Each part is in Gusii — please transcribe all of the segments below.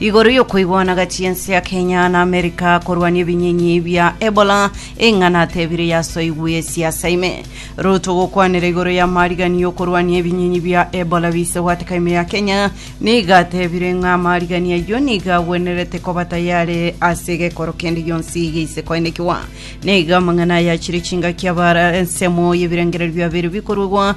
Igoro y'okoigwana gati y'ense ya Kenya na Amerika korwania ebinyinyi bia Ebola, eng'ana atebire yasoigwe esiasa ime. Ruto gokwanera igoro y'amariganio y'okorwania ebinyinyi bia Ebola bise gwateka ime ya Kenya, nigo atebire ng'a amariganio ayio nigo agwenerete koba tayare ase gekoro kende gionsi geise koenekigwa. Nigo amang'ana aya achire chingaki abare ensemo y'ebirengererio biabeire bikoruegwa,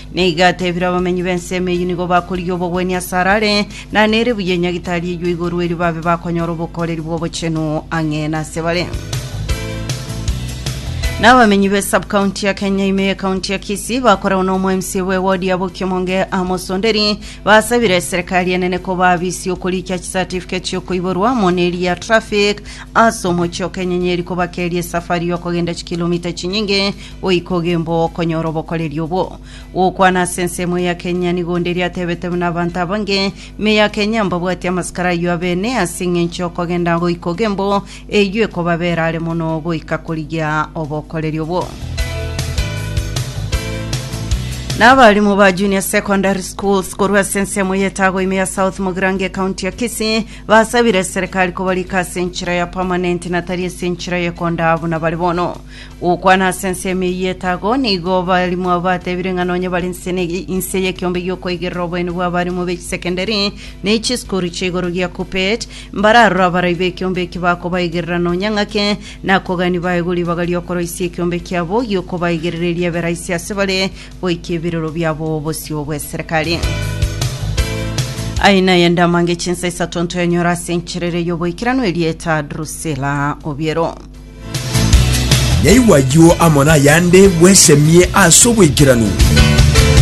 Na igo atebire abamenyi b'ensemo eyio nigo bakorigia obogwenia asare are, na nere buya enyagitari eyio igoro erio babe bakonyora obokoreri bw'obochenu ang'e nase bare. Na abamenyi be subcounty ya Kenya ime ye county ya Kisii bakoragwa na omoMC bwe ward ya Bokiomonge Amos Onderi basabire serikali enene koba abisi okorikia chicertificate chiokoiborwa amo neri ya traffic ase omochie o Kenyenyeri kobakeria esafari yokogenda chikilomita chinyinge Goika ogembe ogokonyora obokoreri obwo. Gokwana ase ensemo ya Kenya nigo onde riatebete buna abanto abange, me ya Kenya mbabwatie amasikara ayio abene ase eng'encho y'okogenda goika ogembo eyio ekobabera are mono goika korigia obokoreri obwo. Na abarimu ba Junior Secondary Schools korwa ase ensemo y'etago ime ya South Mogirange County ya Kisii basabire serikali kobarika ase enchera ya permanent na tari ase enchera y'ekonda buna bare bono. Gokwana ase ensemo eyio y'etago, nigo abarimu abo batebire ng'a nonye bare inse ne- inse y'ekiombe gi'okoigerera oboeni bw'abarimu be chisekendari ne chisukuru chia igoro gia KUPPET, mbararore abarai b'ekiombe eki bakobaigerera nonya ng'ake, na kogania baegwe ribaga ri'okoroisia ekiombe kiabo gi'okobaigerera erio ebe raisi ase bare goika ebirero biabo bosio bw'eserekari. Aye naye ndamange chinsa isato ntoyanyora ase encherere y'oboikeranu erieta Drusila Obiero. Naigwa ayio amo nayande bwesemie as'oboikeranu.